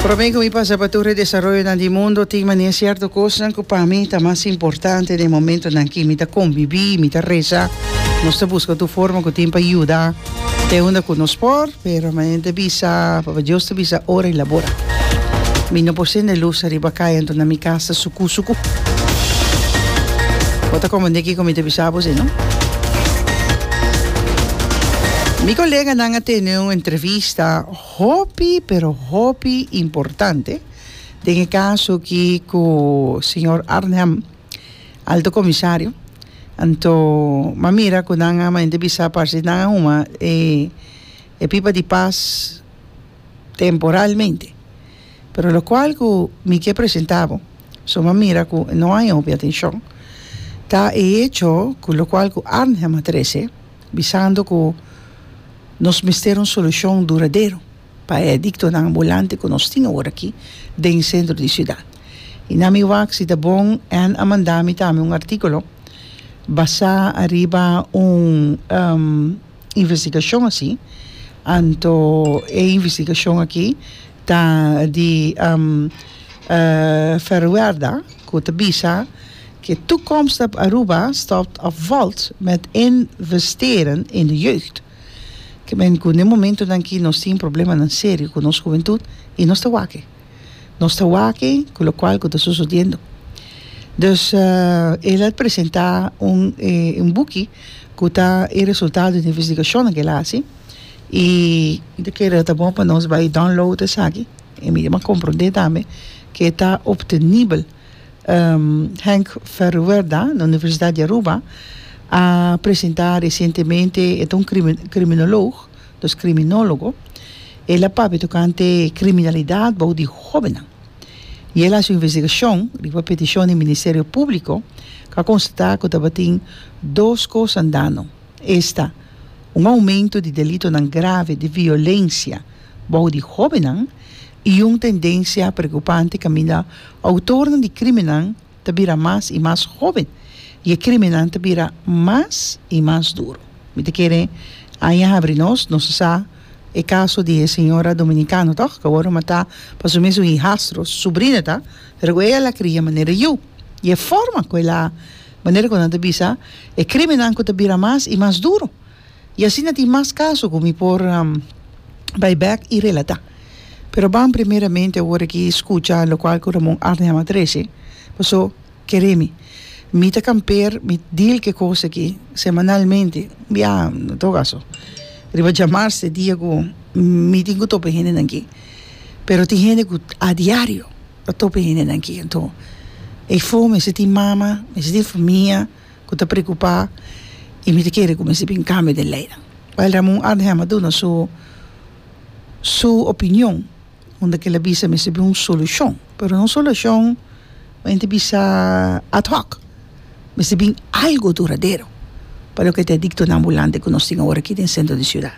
Prome cu mi pasa pa tur e desaroyonan di mundo, tin mania cierto cosnan cu pa mi ta mas importante den e momentonan aki. Mi ta convibi, mi ta reza, nos ta busca tur forma cu tin pa yuda te unda cu nos por, pero manen ta bisa, Papa Dios ta bisa ora y labora. Mi no por sende luz ariba caya, anto na mi cas ta sucu sucu. Bo ta comprende kico mi ta bisa bo si no? Mi coleganan a tene un entrevista. Esta hopi pero hopi importante den e caso aki cu señor Arnhem, Alto Comisario, anto m'a mira cu nan a manente bisa parce nan a huma e e pipa di pas temporalmente, pero locual cu mi ke presenta bo, so m'a mira cu no hay hopi atencion, ta e hecho cu locual cu Arnhem a trece. bisando ku nos mester un solushon duradero pa e adiktonan ambulante ku nos tin awor aki den sentro di siudat. I na mi wak si ta bon Ann a manda mi tambe un artíkulo basá ariba un investigashon asi, anto e investigashon aki ta di Ferroerda ku ta bisa, Ke toekomst ep Aruba staat of valt met investeren in de jeugd? Ke men ku n'e momentonan aki nos tin problemanan serio ku nos hubentud i nos ta wak e. Nos ta wak e ku lokual ku ta sosodiendo. Dus el a presenta un un buki ku ta e resultado di investigashonnan ku el a hasi i. Di kere ta bon pa nos bai download esaki i mi a kompronde tambe ke ta optenibel. Henk Verwoerda na Universidad di Aruba a presenta recientemente e ta un criminoloog dos criminologo el a papia tocante criminalidad bou di hobennan y el a haci un investigacion riba peticion di Ministerio Publico cu a constata cu tabatin dos cosa dano esta un aumento di delitonan grave di violencia bou di hobennan i un tendensia preokupante kaminda outornan di krímennan ta bira mas i mas hóben i e krímennan ta bira mas i mas duru. Mi ta kere aña habri nos, nos ta sa e kaso di e señora dominikano tòg, ku awor a matá pa su mes un hijastro, su subrina ta, pero ku ei a la kria manera yu, i e forma ku el a, manera ku nan ta bisa, e krímennan ku ta bira mas i mas duru. y asina tin mas caso cu mi por bay back y relata. Pero ban primeramente awor aki scucha locual cu Ramon Arnham a trece, paso kere mi. Mi ta camper, mi deal ke cos aki semanalmente, bia en todo caso riba djamarse dia cu mi tin cu tope hende nan aki. Pero tin hende cu a diario ta tope hende nan aki, enton e for mester tin mama, mester tin famia. ku ta preokupá i mi ta kere ku mester bin kambia den leinan. Bail Ramon Arnhem a duna su su opinion unda ke el a bisa mester bin un solushon pero no un solushon ku henter bisa ad hoc mester bin algu duradero pa loke ta e diktonan ambulante ku nos tin awor aki den sentro di siudat.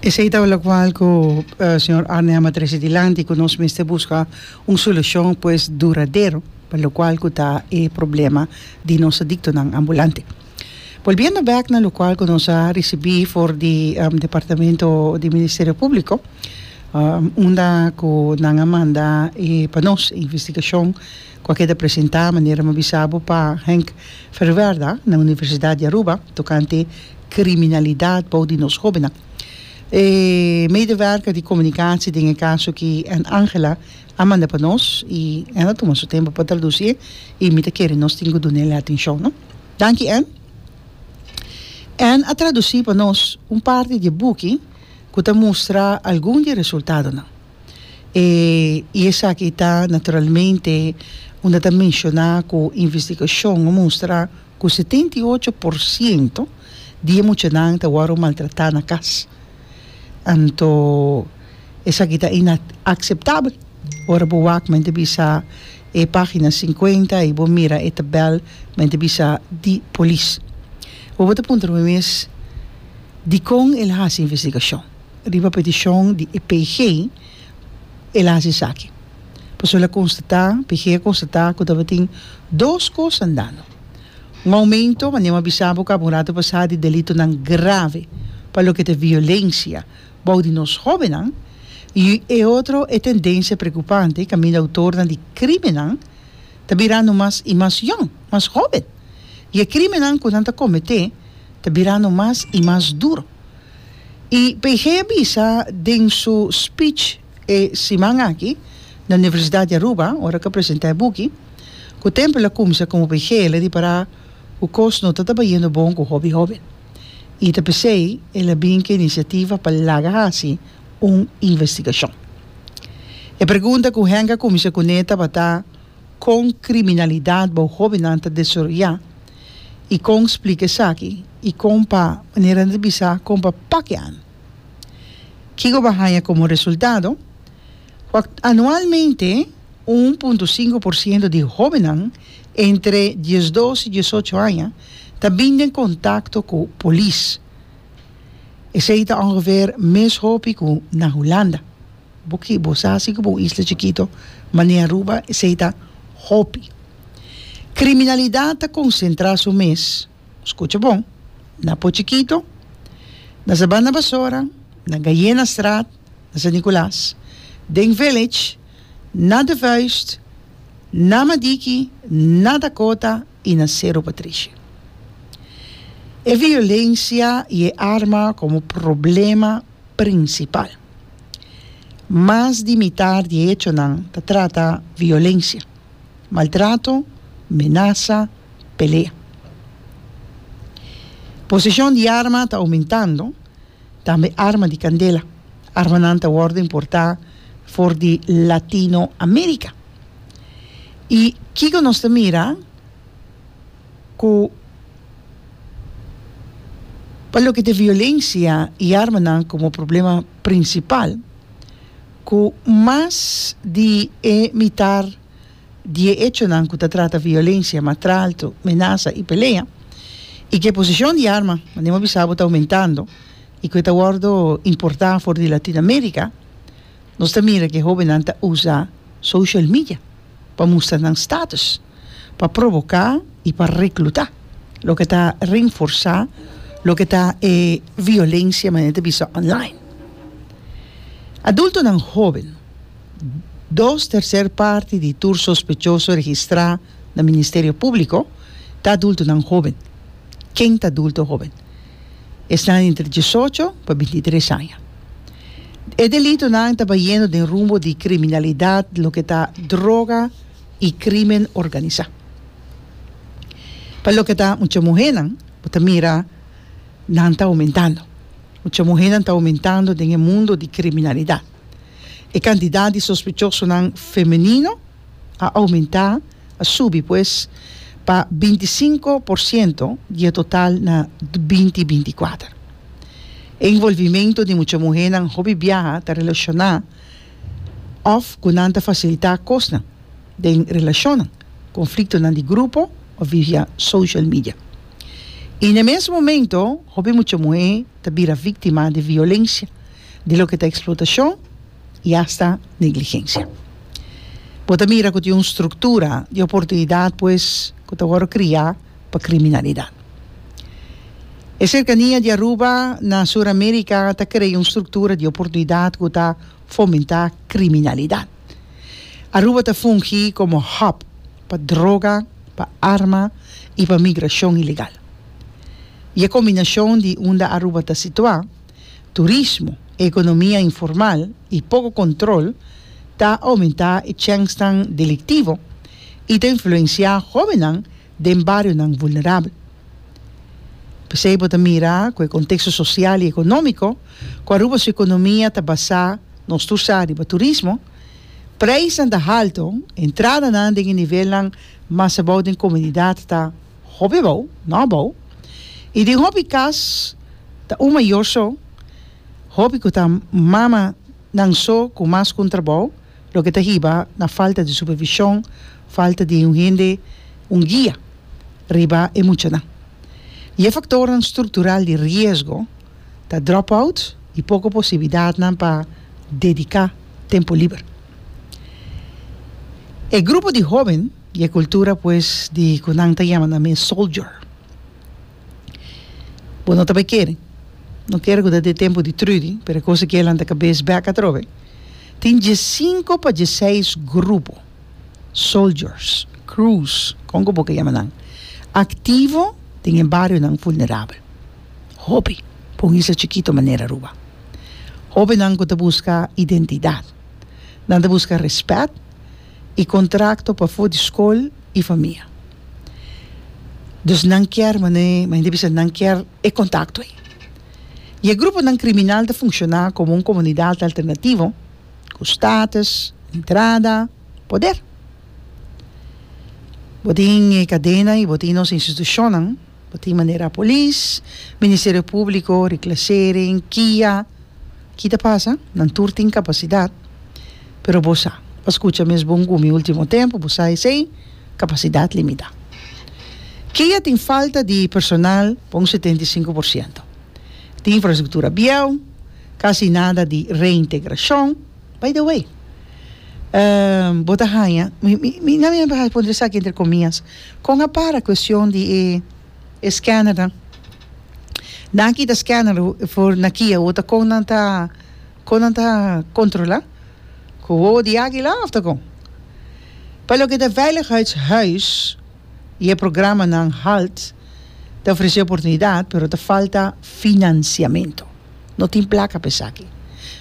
Esei ta locual cu señor Arnhem a trece dilanti cu nos mester busca un solucion pues duradero pa locual cu ta e problema di nos adictonan ambulante. Bolbiendo bek na locual cu nos a ricibi for di departamento di Ministerio Publico unda cu nan a manda e pa nos e investigacion ku a keda presentá manera mi a bisa bo pa Henk Verwerda na Universidat di Aruba tokante kriminalidat bou di nos hobennan. E medewerker di komunikasi den e kaso ki N. Angela a manda pa nos i N. a tuma su tempu pa tradusi e i mi ta kere nos tin ku dun'el e atenshon, no. Danki N. N. a tradusi pa nos un parti di e buki ku ta mustra algun di e resultadonan. E i esaki ta naturalmente unda ta menshoná ku investigashon a mustra ku setenta i ocho por siento di e muchanan ta wòrdu maltratá na kas. Anto esaki ta inakseptabel. Ora bo wak men ta bisa e página sinkuenta i bo mira e tabèl men ta bisa di polis. Bo bo ta puntra bo mes dikon el a hasi investigashon? Riba peticion di e PG el a haci esaki. Pasobra el a constata, PG a constata cu tabatin dos cos andando. Un aumento, manera bo a bisa bo caba un rato pasa, di delitonan grave pa loke ta e violencia bou di nos hobennan y e otro e tendencia preocupante caminda autornan di crimennan ta birando mas y mas yong, mas hoben. Y e crimennan cu nan ta comete ta birando mas y mas duro. I PG a bisa den su speech e siman aki na Universidad di Aruba ora ke a presenta e buki ku Temple a kumsa komo PG el a ripará ku kos no ta tabayendo bon ku hopi hoben i ta p'esei el a bin ku e inisiativa pa laga hasi un investigashon. E pregunta ku Henk a kumsa kuné tabata kon kriminalidat bou hobennan ta desaroyá. y con splica esaki y con pa manera nan ta bisa con pa pakian. Kico bo a haña como resultado? Cu anualmente un punto cinco por ciento di hobennan entre diesdos y diesocho aña ta bin den contacto cu polis. Esey ta ongeveer mes hopi cu na Hulanda. Bo ki bo sa si ku pa un isla chikito mane Aruba esei ta hopi. Kriminalidat ta konsentrá su mes, skucha bon, na Pò Chikito, na Sabana Basora, na Gayenastraat, na San Nikolaas, den Village, na De Vuist, na Madiki, na Dakota i na Sero Patrishi. E violensia i e arma komo problema prinsipal. Mas di mitá di e hechonan ta trata violensia, maltrato, menasa, pelea. Poseshon di arma ta oumentando, tambe arma di kandela. Armanan ta wòrdu importá for di Latino Amerika. I kiko nos ta mira? cu pa loke t'e violencia y armanan como problema principal, cu mas di e mitar di e hechonan cu ta trata violencia, matralto, menaza y pelea, y cu e posicion di arma, manda hemos bisa bo, ta aumentando y cu e ta wordo importa for di Latin America, nos ta mira cu e hobennan ta usa social media pa mustra nan status. pa provoká i pa reklutá, loke ta renforsá loke ta e violensia manera ta bisa online. Adultonan hóben, Dos terser parti di tur sospechoso registrá na Ministerio Públiko ta adultonan hóben. Ken ta adulto hóben? Esnan entre diesocho pa binti tres aña. E delitonan ta bayendo den rumbo di kriminalidat, loke ta droga, i crimen organisa. Pa loke ta mucha muhernan bo ta mira nan ta aumentando. Mucha muhernan ta aumentando den e mundo di criminalidad. E cantidad di sospechosonan femenino a aumenta, a subi pues, pa binti i sinku por ciento di e total na binti binti kuater. E involvimento di mucha muhernan hopi biaha ta relaciona òf ku nan ta fasilitá kosnan den relashonnan, konfliktonan di grupo òf via social media. I na e mes momento hopi mucha muhé ta bira víktima di violensia, di loke ta eksplotashon i asta negligensia. Bo ta mira ku tin un struktura di oportunidat pues ku ta wòrdu kriá, pa kriminalidat. E serkania di Aruba na Suramerika ta krea un struktura di oportunidat ku ta fomentá kriminalidat. Aruba ta fungi komo hòb pa droga, pa arma i pa migrashon ilegal. I e kombinashon di unda Aruba ta situá, turismo, economia informal y poco control ta aumenta e chèngsnan delictivo y ta influencia hobennan den barionan vulnerabel. P'esey bo ta mira cu e contexto social y economico cu Aruba su economia ta basa nos tur sa riba turismo, prijsnan ta halto, entradanan den e nivelnan mas abao den comunidad ta. Hopi abou, no abou. I den hopi kas ta un mayor so, hopi ku ta mama nan so ku mas ku un trabou, loke ta hiba na falta di supervishon, falta di un hende, un guia riba e muchanan. I e faktornan struktural di riesgo ta drop-out i poko posibilidatnan pa dediká tempu liber. E grupo di hóben. I e kultura pues di ku nan ta yama nan mi e soldier. Bo no ta bai kere, no kere ku ta den e tempu di Trudy, pero e kos aki e lanta kabes bèk atrobe. Tin diesinko pa dieseis grupo, soldiers, crews, kon ku bo ke yama nan, aktivo den e barionan vulnerabel. Hopi pa un isla chikito manera Aruba. Hopinan ku ta buska identidat. Nan ta buska rèspèt. y contracto pa for di school y famia. Dus nan kier mane mende bisa nan kier e contacto ey. Y e gruponan criminal ta funciona como un comunidad alternativo cu status, entrada, poder. Bo tin e cadena y bo tin nos institucionnan. Bo tin manera polis, ministerio públiko, reklasering, kia. Ki ta pasa? Nan tur tin kapasidat, pero bo sa, bo a skucha mes bon ku mi último tempu, bo sa esei, kapasidat limitá. Kia tin falta di personal pa un setenta i sinku por siento. Tin infrastruktura bieu, kasi nada di reintegrashon. By the way, eh, bo ta haña, mi, mi, mi na mira pa pone esaki entre komias, kon a para kuestion di e, e scannernan? Nan a kita scanner for na Kia wou ta kon nan ta, kon nan ta kontrola? Ku wowo di águila òf ta kon? Pa loke ta veiligheidshuis i e programanan halt ta ofresé oportunidat, pero ta falta finansiamentu. no tin plaka pa esaki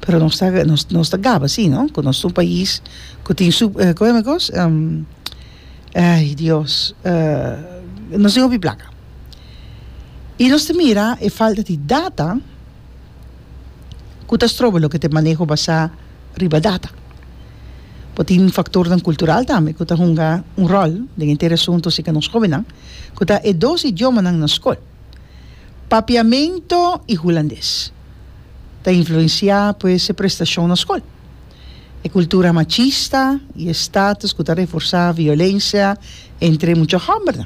pero nos ta nos ta gaba si no cu nos ta un pais cu tin su con eme cos ay dios nos tin hopi plaka y nos ta mira e falta di data cu ta stroba loke ta e maneho basa riba data bo tin factornan cultural tambe cu ta hunga un rol den enter e asunto si ca nos hobennan cu ta e dos idiomanan na school Papiamento y Hulandes ta influencia pues e prestacion na scol. E cultura machista y e status cu ta reforsa violencia entre mucha hombernan.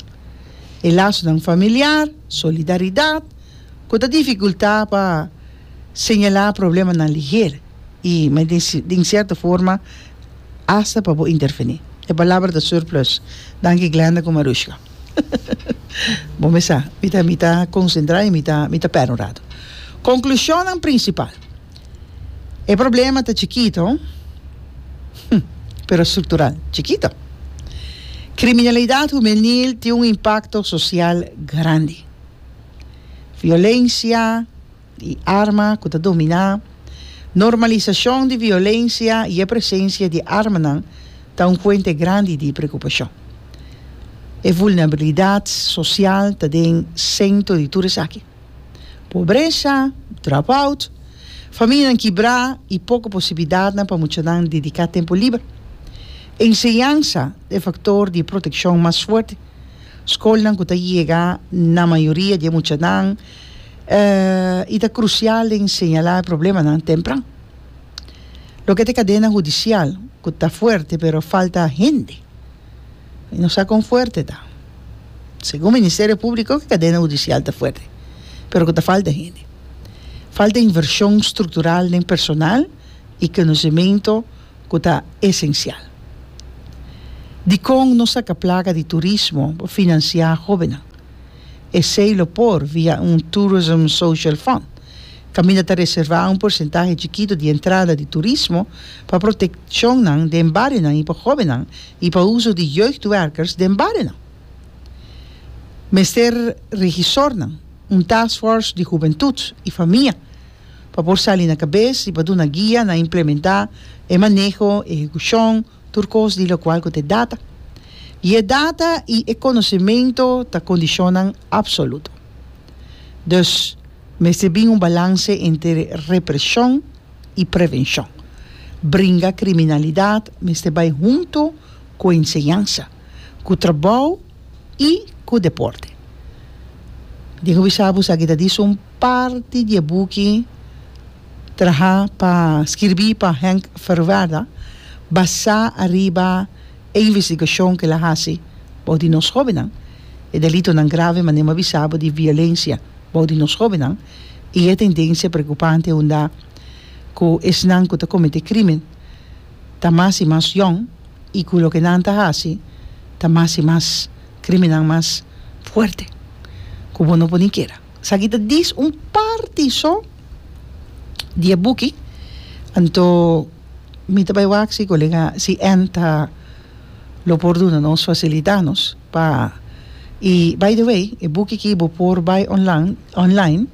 E lasonan familiar, solidaridad cu ta dificulta pa señala problemanan liher y den cierto forma hasta pa bo interveni. E palabra ta surplus. Danki Glenda cu Marushka. Bo me sa, mi ta mi ta konsentrá i mi ta mi ta pèrdè un ratu. Konklushonnan prinsipal. E problema ta chikito, hm, pero struktural chikito. Kriminalidat humenil tin un impakto sosial grandi. Violensia. di arma ku ta dominá, normalisashon di violensia i e presensia di armanan ta un fuente grandi di preokupashon. E vulnerabilidat sosial ta den sentro di tur esaki. Pobresa, dropout, familianan kibrá i poko posibilidatnan pa muchanan dediká tempu liber. Enseñansa ta e faktor di protekshon mas fuerte. Skolnan ku ta yega na mayoria di e muchanan, y ta crucial den señala e problemanan tempran. Loke ta e cadena judicial cu ta fuerte pero falta hende y no sa con fuerte ta. Segun Ministerio Publico e cadena judicial ta fuerte pero cu ta falta hende. Falta inversion structural den personal y conocimento cu ta esencial. Dicon no saca placa di turismo pa financia jobennan. Esei lo por via un Tourism Social Fund, kaminda ta reservá un porsentahe chikito di entrada di turismo pa protekshonnan den barionan i pa hóbennan i pa uso di jeugdwerkers den barionan. Mester regisornan, un taskfors di hubentut i famia pa por sali na kabes i pa duna guia na implementá e maneho, ehekushon, tur kos di lokual ku ta e data, i e data i e konosementu ta kondishonnan apsoluto. Dus, mester bin un balanse entre represhon i prevenshon. Bringa kriminalidat mester bai huntu ku enseñansa. ku trabou i ku deporte. Diego bisa bus aki ta disa un parti di e buki trahá pa skirbí pa Henk Verwerda basá ariba e investigashon ku el a hasi bou di nos hóbennan, e delitonan grave mané mi a bisa bo di violensia bou di nos hóbennan i e tendensia preokupante unda ku esnan ku ta kometé krímen. ta mas i mas yòn i ku loke nan ta hasi ta mas i mas kriminan mas fuerte ku bo no por ni keda. Esaki ta dis un parti so di e buki anto mi ta bai wak si kolega si èn ta lo por duna nos fasilitá nos pa i bai de wei e buki ki bo por bai onlan online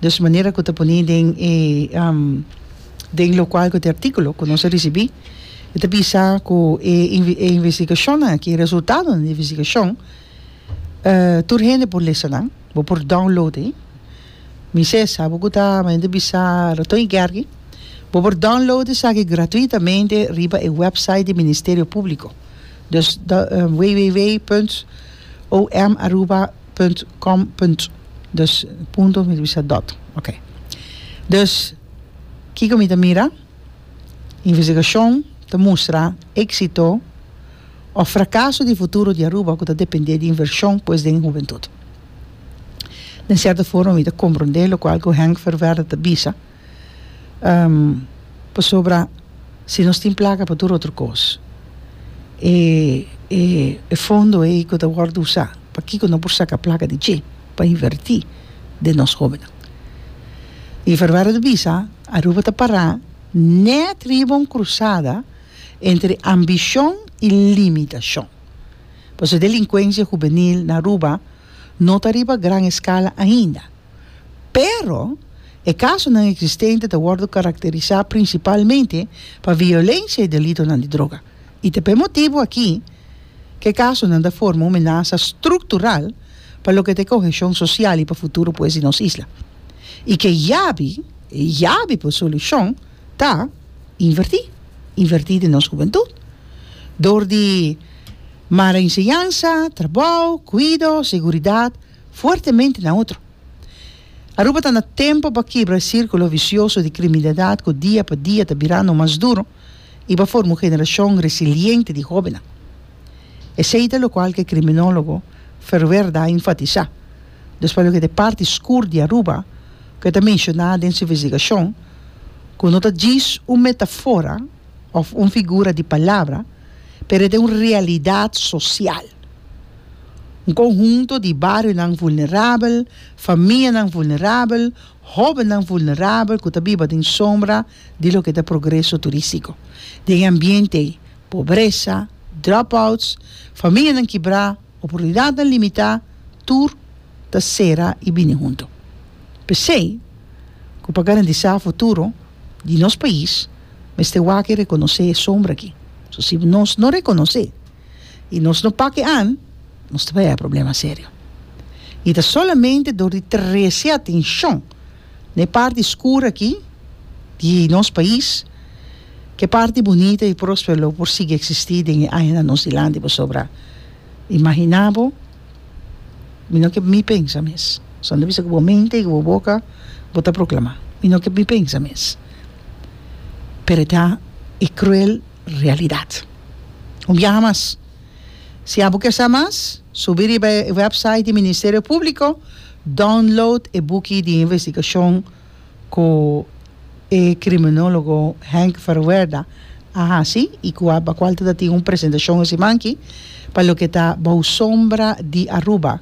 dus manera ku ta pone den e. den locual cu e articulo cu nos a ricibi e ta bisa cu e investigacionnan aki e resultadonan di e investigacion tur hende por lesa nan bo por download ayi mi sesa abo cu ta mi hende bisa raton y guergi bo por download esaki gratuitamente riba e website di ministerio publico dus www punt om aruba punt com punt dus punto mi ta bisa dot ok dus kiko mi ta mira investigashon ta mustra exito of frakaso di futuro di Aruba ku ta depende di invershon pues den hubentut den sierto forma mi ta komprende lokual ku Henk Ververde ta bisa. pasobra si nos tin plaka pa tur otro kos e e fondo ei ku ta wòrdu usá pakiko no por saka plaka di dje pa invertí den nos hóbennan i Ferberra ta bisa Aruba ta pará nèt riba un krusada entre ambishon i limitashon pasobra delinkuensia hubenil na Aruba no ta riba gran eskala ainda. Pero, e kasonan eksistente ta wòrdu karakterisá prinsipalmente pa violensia i delitonan di droga, i ta p'e motibu akí ku e kasonan ta forma un menasa struktural pa loke ta e koheshon sosial i pa futuro pues di nos isla. I ku e yabi, e yabi pa e solushon ta invertí, invertí den nos hubentut dor di mara enseñansa, trabou, kuido, seguridat, fuertemente na otro. Aruba ta na tempo pa kibra e círculo vicioso di criminalidad cu dia pa dia ta birando mas duro y pa forma un generacion resiliente di hobennan. Esey ta locual cu e criminologo Verwerda a enfatisa, dus pa loke ta e parti scur di Aruba, cu e ta menciona den su investigacion, cu no ta djis un metafora, of un figura di palabra pero e ta un realidad social un conhunto di barionan vulnerabel famianan vulnerabel hobennan vulnerabel cu ta biba den sombra di loke ta progreso turistico den e ambiente pobresa drop outs famianan kibra oportunidatnan limitá, tur ta sera i bini huntu. P'esei ku pa garantisá futuro di nos pais mester wak rekonosé e sombra aki. So si nos no rekonosé i nos no pake an, nos ta bai e problema serio. I ta solamente dor di trese atenshon n'e parti skur aki di nos pais, k'e parti bunita i prospero lo por sigui eksistí den e añanan nos dilanti pasobra imaginá bo mi no ke mi pensa mes so anto bisa ku bo mente i ku bo boka bo ta proklamá mi no ke mi pensa mes pero ta e kruel realidat un biaha mas. Si abo ke sa mas, subi riba e wèpsait di Ministerio Públiko, download e buki di investigashon ku e kriminólogo Henk Verwerda a hasi i ku a bakual ta tin un presentashon esimanki pa loke ta Bou Sombra di Aruba.